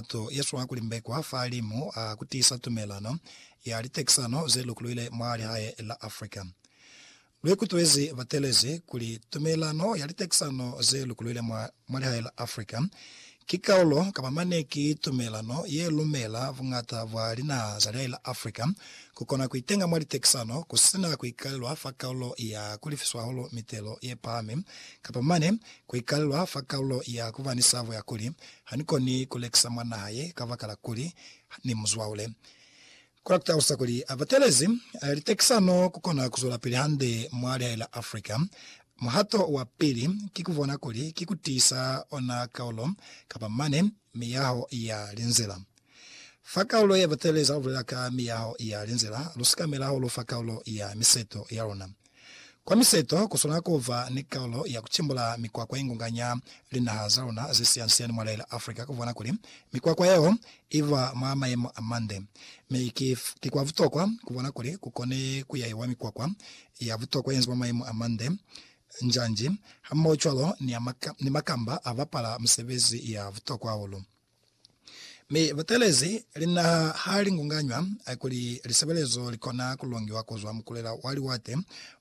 Mutu yezwa kuli mbekwa fa limu a kutisa tumelano ya litekisano ze lukuluile mwa lihae la Africa. Luikutwezi batelezi kuli tumelano ya litekisano ze lukuluile mwa lihae la Africa ki kaulo kapa mane ki tumelano ye lumela buñata bwa linaha za lihae la Africa kukona kuitenga mwa litekisano kusina kuikalelwa fa kaulo ya kulifiswa hahulu mitelo ye pahami kapa mane kuikalelwa fa kaulo ya kubanisa buyakuli Ha ni koni ku lekisa mwa naha ye kabakala kuli ni mu zwaule. Kona ku talusa kuli a batelezi litekisano ku kona ku zwelapili hande mwa lihae la Africa. Muhato wa pili ki ku bona kuli ki ku tiisa ona kaulo kapa mane miyaho ya linzila. Fa kaulo ya batelezi ha lu bulela ka miyaho ya linzila, lu sikamela hahulu fa kaulo ya miseto ya luna. Kwa miseto, ku swanela ku ba ni kaulo ya ku cimbula mikwakwa ye ngunganya linaha za luna ze siyansiyani mwa lela Africa ku bona kuli mikwakwa yeo i ba mwa mayemo a mande. Mi ki, ki kwa butokwa ku bona kuli ku kone ku yahiwa mikwakwa ya butokwa ye nzi mwa mayemo a mande, njanji, hamohocwalo ni, ni makamba a bapala misebezi ya butokwa hahulu. Mi butelezi linaha ha li ngunganywa, kuli lisebelezo li kona ku longiwa ku zwa mukulela wa liwate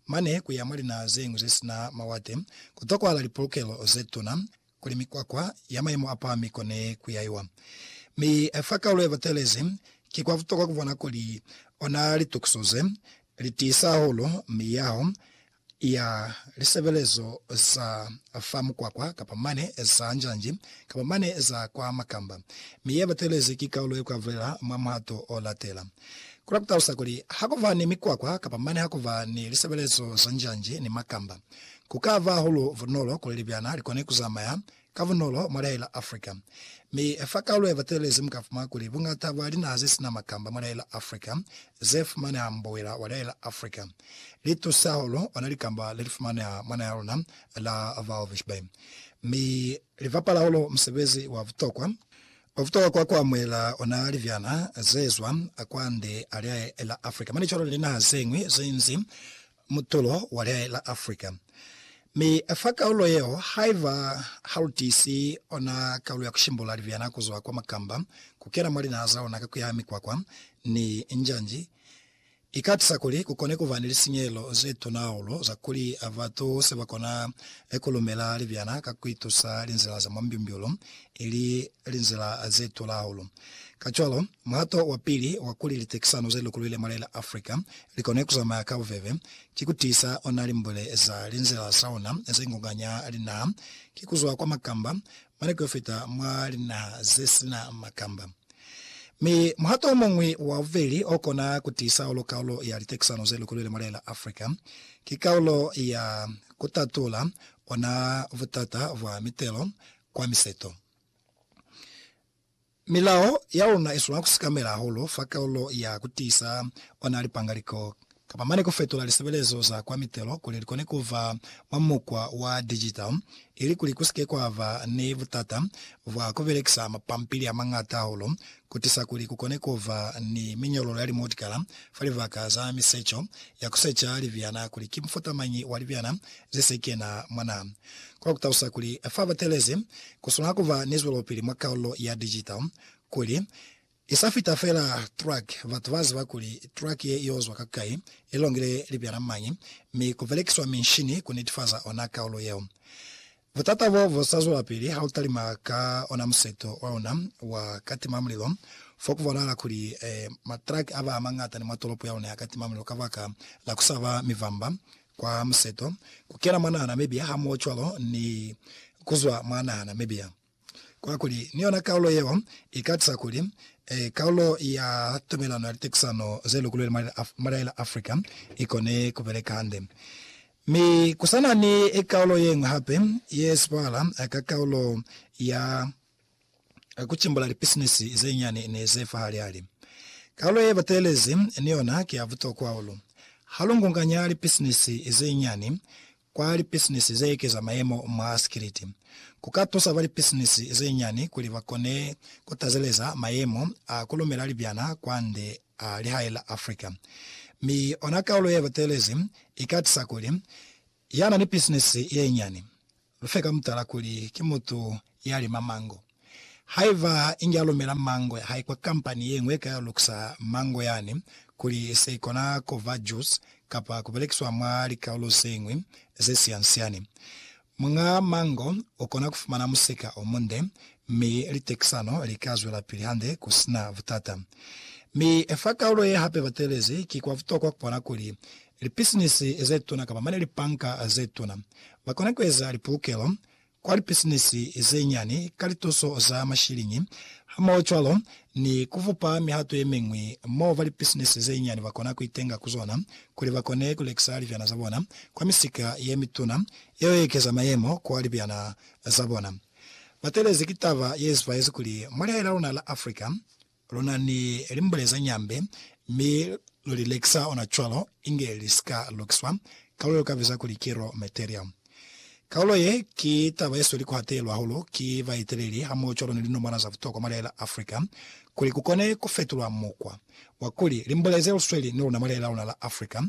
mane ku ya mwa linaha ze ñwi ze sina mawate, ku tokwahala lipolokelo ze tuna kuli mikwakwa ya mayemo a pahami i kone ku yaiwa. Mi fa kaulo ya butelezi, ki kwa butokwa ku bona kuli ona litukiso ze li tiisa hahulu miyaho ya lisebelezo za fa mukwakwa kapa mane za njanji kapa mane za kwa makamba, mi ye batelezi ki kaulo ye kwa bulela mwa muhato o latela. Ku la ku talusa kuli, ha ku ba ni mikwakwa kapa mane ha ku ba ni lisebelezo za njanji ni makamba, ku ka ba hahulu bunolo kuli libyana li kone ku zamaya ka bunolo mwa laela Africa. Mi fa kalulo ya batelelezi mu ka fumana kuli bungata bwa linaha ze sina makamba mwa laela Africa ze fumaneha mu bowela wa laela Africa li tusa hahulu ona likamba le li fumaneha mwa naha ya luna la Walvis Bay mi li bapala hahulu musebezi wa butokwa o butokwa kwa ku amuhela ona libyana ze zwa kwande a laela Africa mane cwalo ni linaha ze ñwi ze nzi mutulo wa lihae la Afrika, mi fa kaulo yeo, haiba ha lu tiisi ona kaulo ya ku shimbula libyana ku zwa kwa makamba ku kena mwa linaha za luna ka ku ya mikwakwa ni njanji, i ka tusa kuli ku kone ku ba ni lisinyehelo ze tuna hahulu za kuli batu se ba kona ku lumela libyana ka ku itusa linzila za mwa mbyumbyulu i li linzila ze tula hahulu. Kacwalo, muhato wa pili wa kuli litekisano ze lukulwile mwa lela Africa li kone ku zamaya ka bubebe, ki ku tiisa ona limbule za linzila za ona ze ngonganya linaha, ki ku zwa kwa makamba mane ku yo fita mwa linaha ze si na makamba. Mi muhato o muñwi wa bubeli o kona ku tiisa hahulu kaulo ya litekisano ze lukulwile mwa lela Africa, ki kaulo ya ku tatula ona butata bwa mitelo kwa miseto. Milao ya ona iswanela kusikamela hahulu fa kalulo ya kutiisa ona lipangaliko kapa mane kufetula lisebelezo za kwa mitelo kuli likone kuva mwa mukwa wa digital ilikuli kusike kwaba ni butata bwa kubelekisa mapampili amañata hahulu kutiisa kuli kukone kuba ni miñololo ya limutikala fa libaka za miseco ya kuseca libyana kuli ki mufutamañi wa libyana zesekena mwa naha Kono kutalusa kuli fa batelezi kuswanela kuba ni zwelopili mwa kaulo ya digital, kuli, Isa fita feela truck, batu baziba kuli truck ye iozwa ka kai, ilongile libyana mañi, mi kubelekiswa minshini kunitifaza ona kaulo yeo. Butata bo busa zwelapili hautalima ka ona museto waluna wa katimamulilo, fo kubonahala kuli matruck aba amañata ni mwa tolopo yaluna ya katimamulilo kabaka la kusaba mivamba Kwa museto, ku kena mwa nahana mebia hamohocwalo ni ku zwa mwa nahana mebia. Kwakuli, ni yona kaulo yeo i ka tusa kuli kaulo ya tumelano ya litekusano ze lukulweli mwa lilaha la Afrika i kone ku beleka hande. Mi ku sa na ni kaulo ye ñwi hape ye sipala ka kaulo ya. ka ku cimbula lipisinisi ze nyani ni ze fa hali-hali. Kalulo ye batelezi ni yona ki ya butokwa hahulu. Ha lu ngunganya lipisinisi ze nyani kwa lipisinisi ze ekeza mayemo mwa sikiliti, ku ka tusa ba lipisinisi ze nyani kuli ba kone ku tazeleza mayemo a ku lumela libyana kwande a lihae la Africa. Mi ona kalulo ye batelezi i ka tisa kuli Ya na ni bisinisi ye nyani. Lu fe ka mutala kuli ki mutu ya lima mango. Haiba inge a lumela mango ya hae kwa kampani ye ñwi ye ka lukisa mango yani kuli se ikona ku ba jusi kapa ku belekiswa mwa likaulo ze ñwi ze siansiani, muñ'a mango u kona ku fumana musika o munde mi litekisano li ka zwelapili hande ku si na butata. Mi fa kaulo ye hape batelezi, ki kwa butokwa ku bona kuli Lipisinisi ze tuna kamba mane lipanka ze tuna ba kona ku eza lipulukelo kwa lipisinisi ze nyani ka lituso za mashiliñi hamohocwalo ni ku fupa mihato ye miñwi mo ba lipisinisi ze nyani ba kona ku itenga ku zona kuli ba kone ku lekisa libyana za bona kwa misika ye mituna yeo ye ekeza mayemo kwa libyana za bona. Batelezi ki taba ye zipaezi kuli mwa lihae la luna la Africa, Lu na ni limbule ze nyambe, mi lu li lekisa ona cwalo, inge li si ka lukiswa, kalulo ye lu ka biza kuli ki raw material. Kalulo ye ki taba ye sweli ku hatelelwa hahulu ki baeteleli hamohocwalo ni linomwana za butokwa mwa lihali la Africa, kuli ku kone ku fetulwa mukwa wa kuli limbule ze lu sweli ni luna mwa lihali la luna la Africa,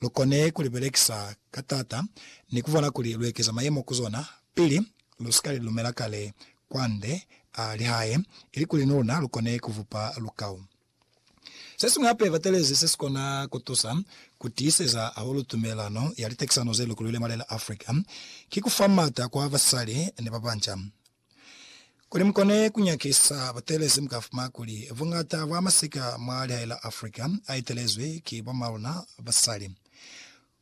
lu kone ku li belekisa ka taata ni ku bona kuli lu ekeza mayemo ku zona pili Lu si ka li lumela kale kwande a li hae, ilikuli ni luna lu kone ku vupa lukau. Se siñwi hape batelezi se si kona ku tusa ku tiiseza hahulu tumelano ya litekisano ze lukulwile mwa lela Africa, ki ku fa m'ata kwa basali ni ba banca. Kuli mu kone ku nyakisa batelezi, mu ka fumana kuli buñata bwa masika mwa lihae la Africa a etelezwi ki bomaluna basali.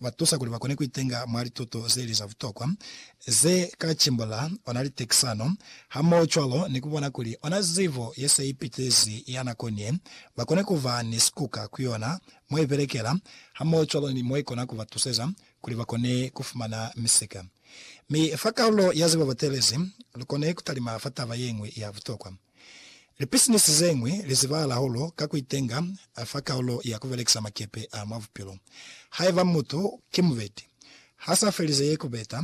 ba tusa kuli ba kone ku itenga mwa lituto ze li za butokwa ze ka cimbula ona litekisano, hamohocwalo ni ku bona kuli ona zibo ye se ipitezi ya nakoni ye ba kone ku ba ni sikuka ku yona mwa ibelekela hamohocwalo ni mwa ikona ku ba tuseza kuli ba kone ku fumana misika. Mi fa kalulo ya zibo batelezi, lu kone ku talima fa taba ye ñwi ya butokwa. Lipisinisi ze ñwi li zibahala hahulu ka ku itenga fa kaulo ya ku belekisa makepe a mwa bupilo. Haiba mutu ki mubeti, ha sa felize ye ku beta,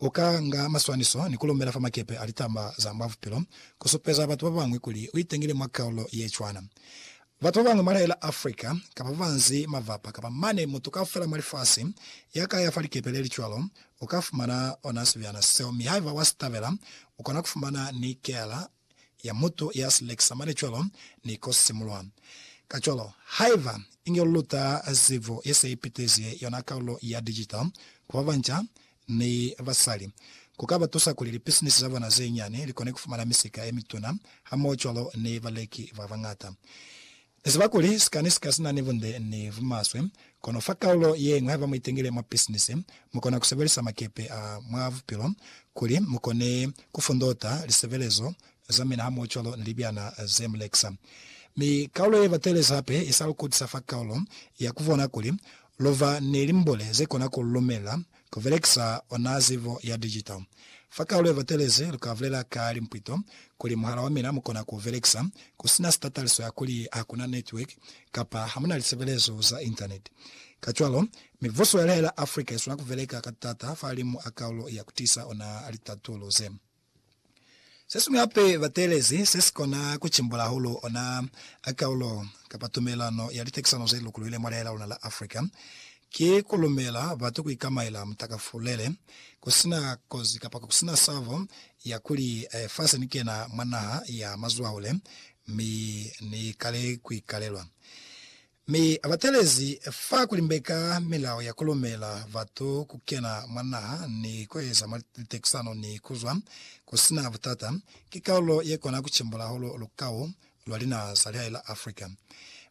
u ka nga maswaniso ni ku lumela fa makepe a litaba za mwa bupilo ku supeza batu ba bañwi kuli u itengile mwa kaulo ye cwana. Batu babañwi mwa laela Africa kapa babanzi mavapa kapa mane mutu kaufela mwa lifasi ya ka ya fa likepe lelicwalo uka fumana ona sibyana seo mi haiba wa sitabela ukona kufumana ni keala ya mutu ya silekisa mane cwalo ni ko simulwa. Kacwalo, haiba inge luluta zibo yese ipitezi yona kaulo ya digital ku babanca, ni basali, ku ka ba tusa kuli lipisinisi za bona ze nyani li kone ku fumana misika ye mituna hamohocwalo ni baleki ba bañata. Ni ziba kuli sika ni sika si na ni bunde ni bumaswe, kono fa kaulo ye ñwi haiba mu itengile mwa pisinisi, mu kona ku sebelisa makepe a mwa bupilo kuli mu kone ku fundota lisebelezo za mina hamohocwalo ni libyana ze mu lekisa. Mi kaulo ye batelezi hape i sa lu kutisa fa kaulo ya ku bona kuli Lova ni limbuli ze kona ku lumela ku belekisa ona zibo ya digital. Fa kaalo ye batelezi, lu ka bulela ka limpwito kuli muhala wa mina mu kona ku belekisa ku sina sitataliso ya kuli ha ku na network kapa ha mu na lisebelezo za Internet. Kacwalo, mibuso ya lihaya la Africa i swana ku beleka ka taata fa limu a kaolo ya ku tisa ona litatulo ze. Sesiñwi hape bateelezi sesikona kucimbula hahulu ona a kaulo kapa tumelano ya litekisano zelukuluhile mwa leha laluna la Afrika ki kulumela batu kuikamaela mutakafulele, kusina kozi kapa kusina sabo ya kuli fa senikena mwa naha ya mazwahule mi nikale kuikalelwa. Mi abatelezi fa kulimbeka milao ya kulumela batu kukena mwa naha ni kueza litekisano ni kuzwa kusina butata, ki kalulo yekona kucimbula hahulu lukau lwa linaha za lihae la Africa.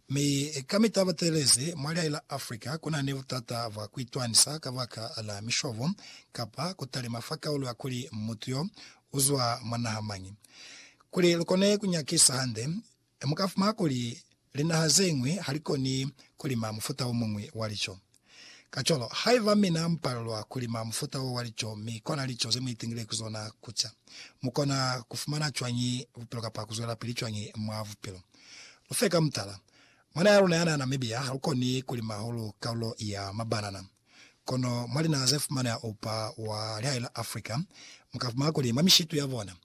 Mi kamita abatelezi mwa lihae la Africa kuna ni butata bwa kuitwanisa kabaka la mishobo kapa kutalima fa kalulo ya kuli mutu yo uzwa mwa naha mañi. Kuli lukone kunyakisa hande Mi mu ka fumana kuli linaha ze ñwi ha li koni ku lima mufuta o muñwi wa lico. Kacwalo, haiba mina mu palelwa ku lima mufuta wo wa lico mi kona lico ze mu itingile ku zona ku ca, mu kona ku fumana cwañi bupilo kapa ku zwelapili cwañi mwa bupilo? Lu fe ka mutala. Mwana ya luna ya na Namibia ha lu koni ku lima hahulu kalulo ya mabanana. Kono mwa linaha ze fumaneha upa wa lihae la Africa, mu ka fumana kuli mwa mishitu ya bona,